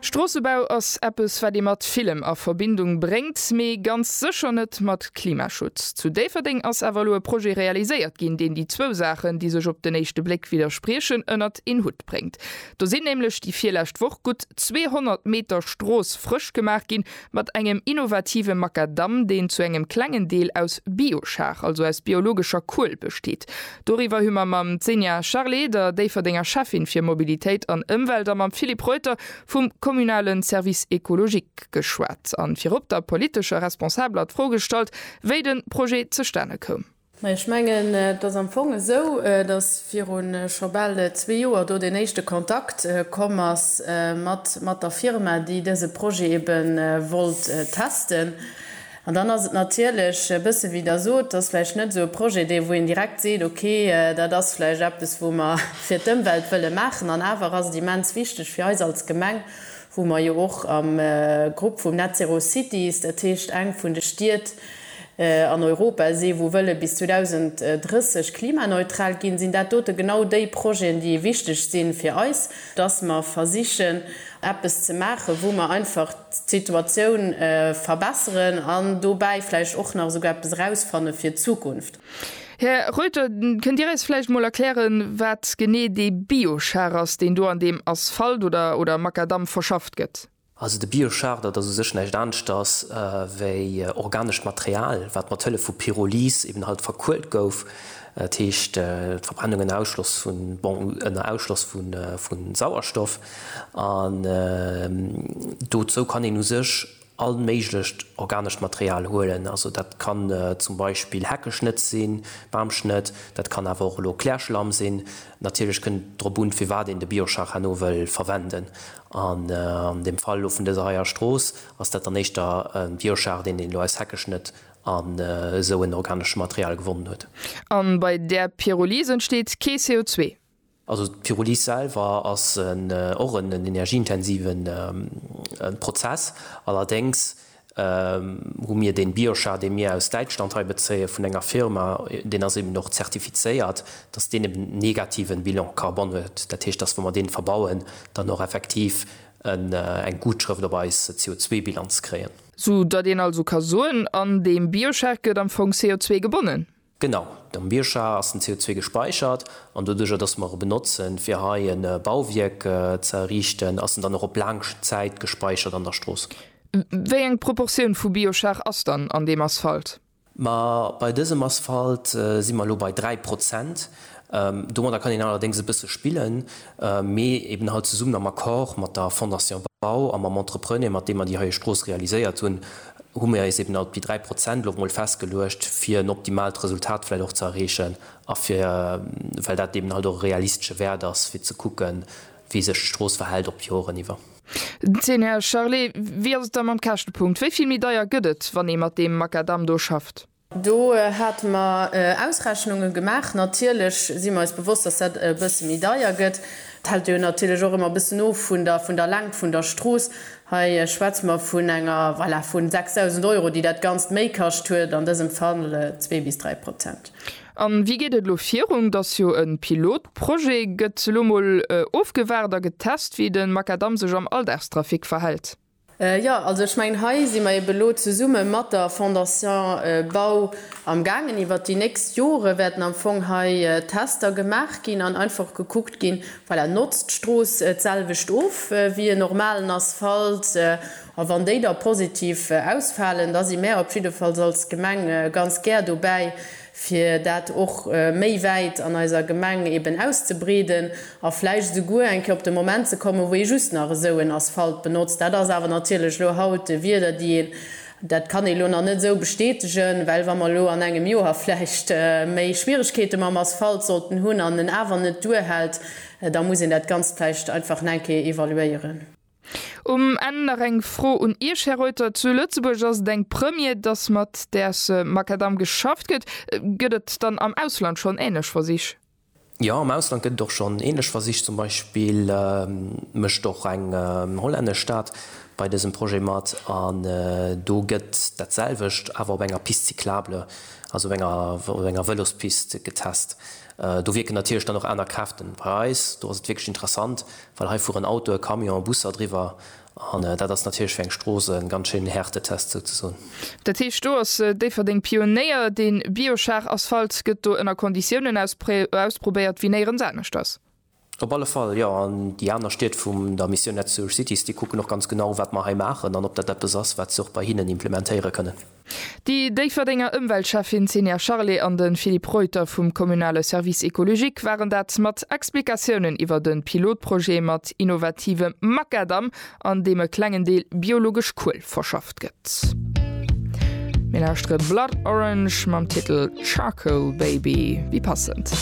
Stroossebau ass eppes wat ee mat villem a Verbindung bréngt, mee ganz sécher net mat Klimaschutz. Zu Déifferdeng ass awer elo e Projet realiséiert ginn, deen déi zwou Saachen, déi sech op den éischte Bléck widderspriechen, ënnert een Hutt bréngt. Do sinn nämlech déi virlescht Woch gutt 200 Meter Strooss frësch gemaach ginn, Mat engem innovative Makadamm, deen zu engem klengen Deel aus Biochar, also aus biologescher Kuel, besteet. Doriwwer hu mer mam Xenia Charlé, der Déifferdenger Schäffin fir Mobilitéit an Ëmwelt, a mam Philippe Reuter vum kommunale Service écologique geschwat an virop der politescher Responsabeler d'Fro gestallt, wéi de Projet zustane koum. Mä ech mengen, et ass am Fong esou, datt viru scho bal zwee Joer do deen éischte Kontakt komm ass mat der Firma, déi dëse Projet ebe wollt testen. An dann ass et natierlech e bësse wéi Der sot, et ass vläicht net esou e Projet, dee wou een direkt seet, okay, dat ass vläicht eppes, wou mer fir d'Ëmwelt wëlle maachen. An awer ass et immens wichteg fir eis als Gemeng, wou mer jo och am Grupp vum Net Zero Cities, dat heescht eng vun de Stied an Europa si wou wëlle bis 2030 klimaneutral ginn, sinn dat dote genau déi Projeten, déi wichteg si fir eis, dass mer versichen eppes ze maachen, wou mer einfach d'Situatioun verbesseren an dobäi vläicht och nach esouguer eppes erausfanne fir d'Zukunft. Här Reuter, kënnt Dir eis vläicht emol erklären, wat genee dee Biochar ass, deen do an deem Asphalt oder Makadamm verschafft gëtt? Also de Biochar, dat ass u sech näischt aneschters wéi organescht Material, wat mat Hëllef vu Pyrolyse eben halt verkuelt gouf, dat heescht d'Verbrennung ënner Ausschloss vu, bon, ënner Ausschloss vu Sauerstoff. An dozou kann een u sech All méiglecht organescht Material huelen, also dat kann zum Beispill Heckeschnëtz sinn, Bamschnëtt, dat kann awer och elo Klärschlamm sinn. Natierlech kënnt et drop un, firwat een de Bioscharhano wëll verwenden. An dem Fall elo vun dëser heier Strooss ass dat dann éischter e Bioschar, deen een elo aus Heckeschnëtt an esou en organeschem Material gewonnen huet. A bei där Pyrolyse entsteet kee CO2. Also d'Pyrolyse selwer ass och en energieintensive Prozess. Allerdéngs hu mir dee Biochar, dee mir aus Däitschland hei bezéie vun enger Firma, deen ass eben och zertifizéiert, dass deen eben en negativen Bilan carbone huet. Dat heescht, dass wa mer deen verbauen, dann och effektiv eng Gutschrëft op eis CO2-Bilanz kréien. Sou datt een also ka soen, an deem Biochar gëtt am Fong CO2 gebonnen? Genau, am Bioscha ass den CO2 gespäichert an doduerjer dass mer e benotzen fir hei e Bauwierk ze erriichten, ass en dann och op laang Zäit gespäichert an der Strooss. Wéi eng Proportioun vu Bioschar ass dann an deem Asphalt? Ma bei dësem Asphalt si mer elo bei 3 Prozent. Domadder kann een allerdéngs e bësse spillen, mee eben halt zesummen am Accord mat der Fondation Bau a mam Entrepreneur, mat deem mer déi heie Strooss realiséiert hunn, hu mir eis eben halt op déi 3 Prozent elo mol festgeluecht, fir en optimaalt Resultat vläicht och ze erreechen a fir, well dat eben halt och e realistesche Wäert ass, fir ze kucken, wéi sech d'Strooss verhält op d'Joren iwwer. Den Zeen, Här Charlé, wéi ass et da mam Käschtepunkt? Wéi vill méi deier gëtt et, wann ee mat deem Makadamm do schafft? Do hate mer Ausrechnunge gemaach. Natierlech si mer eis bewosst, dass dat e bësse méi deier gëtt. Et hält jo natierlech och ëmmer e bëssen of vun der, vun der Längt vun der Strooss. Hei schwätze mer vun enger, voilà, vu 6.000 Euro, déi dat Ganzt méi kascht huet, an dësem Fall zwee bis dräi Prozent. A wéi geet et elo virun? Et ass jo e Pilotprojet. Gëtt elo mol ofgewaart a getest, wéi de Makadamm sech am Alldagstrafic verhält? Jo, also ech mengen, hei si mer eebe elo zesumme mat der Fondation Bau am gaangen. Iwwert déi nächst Jore wäerten am Fong hei Tester gemaach ginn an einfach gekuckt ginn, voilà, notzt d'Strooss d'selwecht of wéi en normalen Asphalt? A wann déi da positiv ausfalen, da si mär op jiddefalls als Gemeng ganz gär dobäi, fir dat och méi wäit an eiser Gemeng eben auszebreeden a vläicht esouguer eng Kéier op de Moment ze kommen, wou ee just nach esou en Asphalt benotzt. Dat ass awer natierlech elo haut Wieder, déi een, dat kann ee elo nach net esou bestätegen, well wa mer elo an engem Joer vläicht méi Schwierigkeete mam Asphalt sollten hunn an en awer net duerhält, da muss een dat Ganzt vläicht einfach nach eng Kéier evaluéieren. Um Enn nach eng Fro un Iech, Här Reuter. Zu Lëtzebuerg ass et eng Première, dass mat däers Makadamm geschafft gëtt. Gëtt et dann am Ausland schonn änlech Versich? Jo, am Ausland gëtt et och schonn änlech Versich. Zum Beispill mécht och eng hollännesch Stad bei dësem Projet mat. An do gëtt dat selwecht, awer op enger Piste cyclable, also op enger Vëlospist getest. Do wierken natierlech dann och aner Kräften. Bei eis do ass et wierklech interessant, well hei fueren Autoe, Camione, Busser driwwer an dat ass natierlech fir eng Strooss e ganz schéinen Härtetest souzesoen. Dat heescht, do ass Déifferdeng Pionéier. Dee Bioschar-Asphalt gëtt do ënner Konditiounen ausprobéiert wéi néierens aneschters. Op alle Fall, jo. An déi aner Stied vum der Mission Net Sewer Cities, déi kucken och ganz genau, wat mer hei maachen an ob dat eppes ass, wat se och bei hinnen implementéiere kënnen. Déi Déifferdenger Ëmweltschäffin Zenia Charlé an de Philippe Reuter vum kommunale Service écologique waren dat mat Explikatiounen iwwer de Pilotprojet mat innovative Makadamm, an deem e klengen Deel biologesch Kuel verschafft gëtt. Mir lauschtere Blood Orange mam Titel Charcoal Baby, wéi passend.